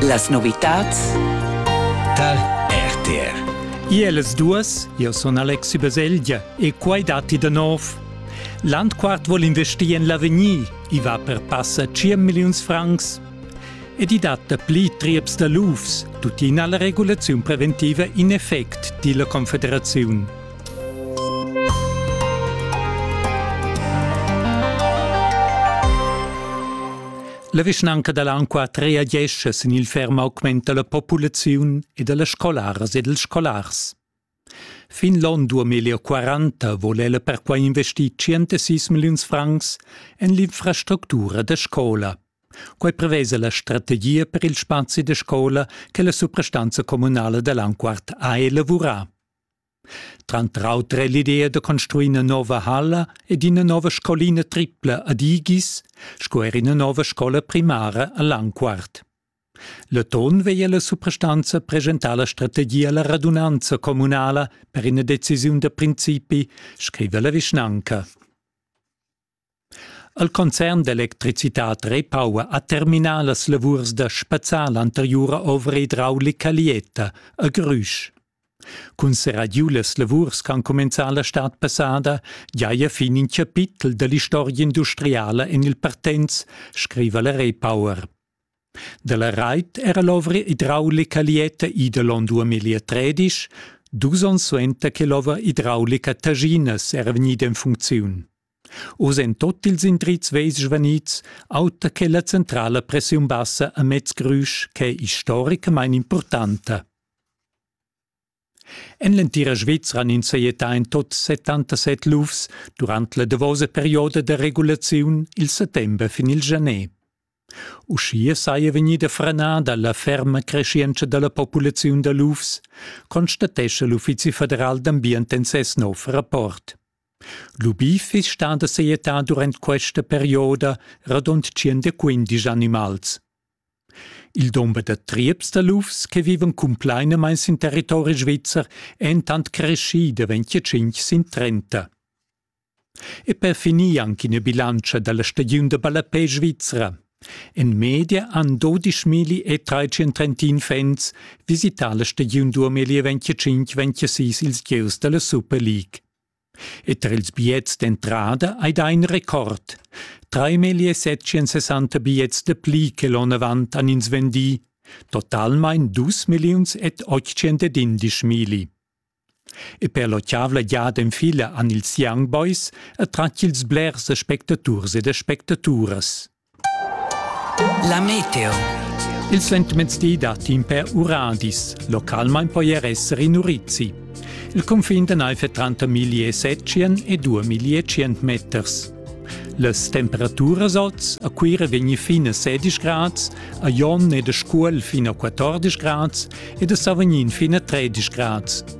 Las novitads tar RTR. Ielas duas, io sun Alexi Baselgia e quai datti da nov. Landquart vuol investir en l'avegnir, i va per passa 100 milliuns francs. Ed i dat pli trieps da lufs, tuttina la regulaziun preventiva in effect, di la Confederaziun. La vischnanca da Lanqua reagescha sin il ferm augment da la populaziun e da las scolaras ed ils scolars. Fin l'onn 2040 vole ella perquai investir 106 milliuns francs en l'infrastructura da scola. Quai prevesa la strategia per il spazi da scola che la suprastanza communala da Lanquart ha elavurà. Tranter auter è l'idea da construir ina nova halla ed ina nova scolina tripla ad Igis sco er ina nova scola primara a Langquart. L'atun veglia la suprastanza presentar la strategia alla radunanza communala per ina decisiun da principi, scriva la vischnanca. El concern d'electricitad Repower ha terminà las lavurs da spazzar l'anteriura ovra idraulica Lieta a Grüsch. Cun serrar giu las lavurs ch'han cumenzà la stad passada giaja fin in chapitel da l'istorgia industriala en il Partenz, scriva la Repower. Da la rait era l'ovra idraulica Lieta Idelon 2013, dus onns suenter che l'ovra idraulica Taginas era vegnida en funcziun. Oz en tot ils indrizs veis svanids, auter che la centrala pressiun bassa a mez Grüsch ch'è historicamain impurtanta. En l'entira Svizra han ins sajettà en tot 77 lufs durant la davosa perioda da regulaziun il settember fin il janer. Uschia saja vegnida franada la ferma creschientscha da la populaziun da lufs, constatescha l'Uffizi federal d'ambient en ses nov rapport. Lubì fiss stà da sajettar durant questa perioda radund tschient animals. Il dumber da trieps da lufs che vivan cumplainamain sin territori svizzer è entant creschì da 25 sin 30. E per finir anche ina bilantscha da la stagiun da ballapè svizra. En media han 12.000 e 331 fans visità la stagiun 2025-26 ils gieus da la Super League. E tar ils biets d'entrada hai dà in record. Trais settschensessanta biets da pli che l'onn avant han ins vendì, totalmain dus milliuns ed ottschentadindisch milli. E per l'otgavla giada en fila han ils Young Boys attratg ils blers aspectaturs ed aspectaturas. La meteo. Il sentimezdi da timpe uradis. Localmain poi er essere in urizi. Il confin de naife 30 700 e 2100 meters. Las temperaturas oz a Cuira vegni fin a 16 grads, a Jon e de Scuol fin a 14 grads e de Savognin fin a 13 grads.